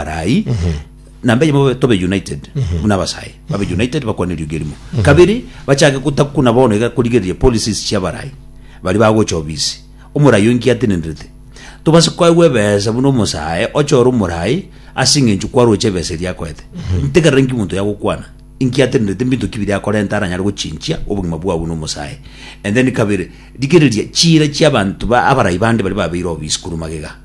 arai na mbeche bobe tobe united muna abasae babe united bakwane eriogi erimo kabere bachake gotaku na bono iga korigereria policies chia abarai bari bagocha obisi omorai oinki atenenderete tobase koegwa ebesa buna omosae oche ore omorai ase eng'encho kwaroche ebesa eria akoete ntegerera inki omonto yagokwana inki atenenderete mbinto ki biria akorenta aranyare gochinchia obogima bwao buna omosae and then kabere rigereria chiira chiabanto ba abarai bande baria babeire obisi korwa magega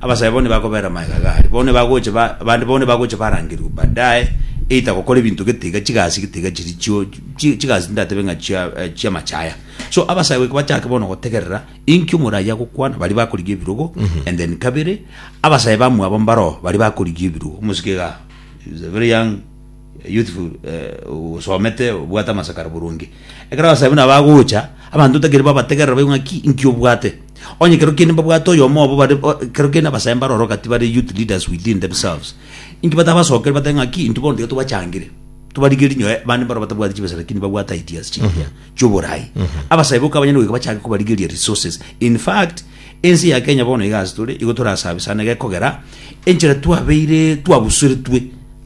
Abasae bono nibakobeera magega gaaria, bono nibagocha ba, abande bono nibagocha barangerigwe baadaye, either gokora ebinto getiga, chigasi getiga chiri chio, chi- chigasi tindatebe ng'a chia, eh, chi'amachaya. So abasae goika bachake bono gotegerera, inki omura aye agokwana, baria bakorigia ebirogo, and then kabere, abasae bamwabo mbaroo, baria bakorigia ebirogo, omosike igaa, he was a very young. youthful eh, osomete obwate amasakara burungi ekero abasae buna bagocha abanto otakiri babategerera baigo ng'aki inki obwate onye kero kende mbabwate oyomo obo bare o- kero kende abasae mbaroro gati bare youth leaders within themselves inki batabasokeri bate ng'aki intwe bono tiga tobachangire tobarige rinyoe abande mbaro batabwati chibesa lakini babwate ideas chingiya chioborai abasae boka abanyene goika bachange kobarigeria resources in fact ense ya kenya bono iga ase tore igo torasabe sana iga ekogera enchera twabeire twabusoretwe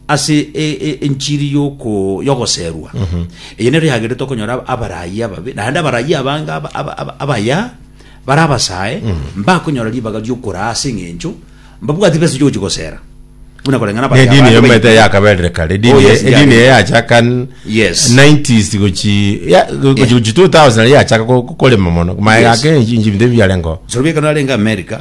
Ase enchiri y'ogoserwa eye nero yagenderete okonyora abarayia ababe, naende abarayia abange abaya bare abasae mbakonyora ribaga ri'okoraa ase engencho mbabwati besa chi'ogochia gosera. Buna koreng'ana abarayia abande. Edini eye omanyete yakaberire kare. Edini Oh, yes, edini eye yari. yachaka Yes. 90s gochi ya- gochi gochi 2000 yachaka ko- ko- korema mono. Maega Yes. ake enchi- enchi binto ebi biarengeo. Sorobia ekero narenge America,